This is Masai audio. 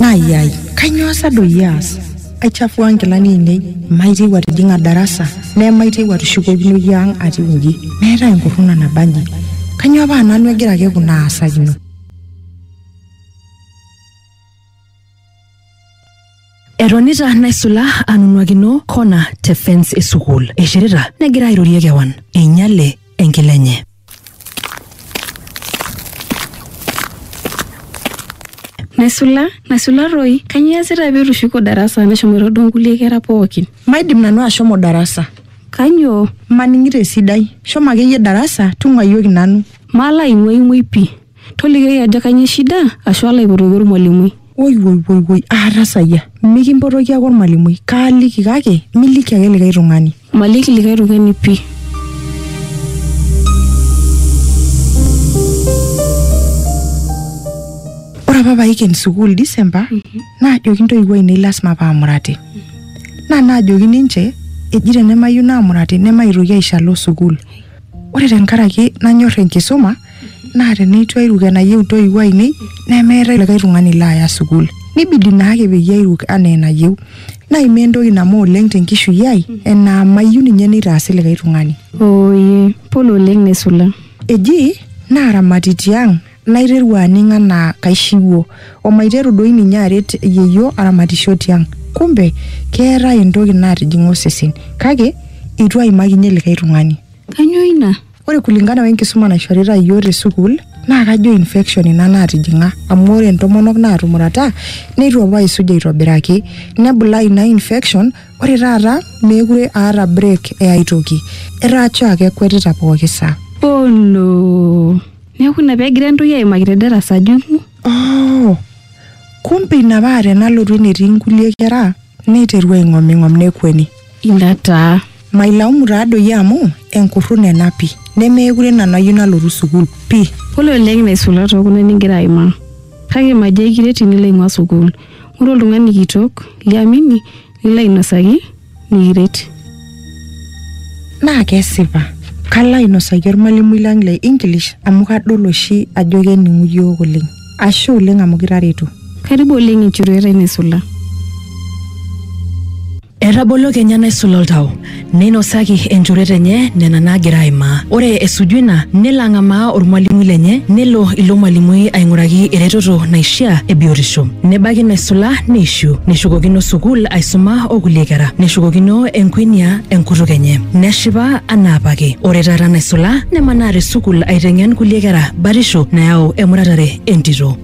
Nayai, kainyoo sa doi aas? Aichafua nkilani ainei, maitieu atijing'a darasa, nemaitieu atushukokinoyu ang' atiu inji. Meetae enkurruna nabanji. Kainyoo paa nanu egira ake kuna aasakino? Etonita naisula anunuakino kona te fence e sukuul. Eishirita negira airorie kewan. Einyale enkila enye. Naisula, naisula toi, kanyoo iasita pee itushuko darasa meshomoito duo nkulie kera pookin? Maidim nanu ashomo darasa. Kanyoo? Maning'ito esidai. Shomo akeyie darasa tung'uayioki nanu. Malo aing'uaing'uai pii. Tolikioki ajo kanyoo shida ashu alo aipotoki olmalimui. Woi woi woi woi aatasayia. Mikimpotoki ake olmalimui. Kaaliki kake miliki ake likae tung'ani. Maliki likae tung'ani pii. Ore apa paiken sukuul December naajoki ntoiwuo ainei lasima paamurati. Naa naajoki ninche eji tenemayieu naamurati nemaitoki aisho alo sukuul. Ore tenkaraki nanyorr enkisuma naa teneitu airuk enayieu intoiwuo ainei nemeetae likae tung'ani laaya sukuul nibidi naake peyie airuk anaa enayieu naimaa entoki namo oleng tenkishui ai enaa mayieu ninye neitaasi likae tung'ani Oye, pole oleng nesula. eji naaramati tiang naiteru aning anaa kaishiwuo omaiteru doi ninye aret yeyio aramatisho tiang kumbe keetae entoki natijing'a osesen kake eitu aimakinyie likae tung'ani Kanyoo ina? Ore kulingana we nkisuma naishorita iyiook te sukuul naa kajo infection ina naatijing'a amu ore intomonok naatumurata neitu apa eisuj aitobiraki nebulaa ina infection ore taata meekure aata break e ai toki etaa choo ake ekuetita pooki saa. Oh no! Neeku ina pee egira entoi aimaki te darasa ajung'u? Oh! Kumbe ina paa tenalotu enetii inkulie kera Neiteru aing'oming'om nekueni. Ina taa. Mailaumu taa doi amu enkurruna ena pi. Nemeekure nanu ayieu nalotu sukuul pi. Pole oleng naisula too kuna nigira aimaa. Kake majo aikiret inilo aing'ua sukuul. Ng'oru oltung'ani kitok liamini lilo ainosaki nikiret. Naa kesipa. Kalo ainosaki olmalimui lang le English amu kadol oshi ajo kening'u iyiook oleng. Ashe oleng amu kitareto. Karibu oleng enchoruet ai naisula. Etabolo kenya naisula oltau, neinosaki enchoruet enye nena naagira aimaa. Ore esuju ina, nelo ang'amaa olmwalimui lenye, nelo ilo mwalimui aing'uraki eretoto naishiaa e biotisho. Nebaiki naisula neishiu, neshukokino sukuul aisuma o kulie kera. Neshukokino enkuenia. enkutuk enye neshipa anaa apake ore taata naisula nemanaa te sukul aiteng'en kulie kera batisho nayau emuratare entito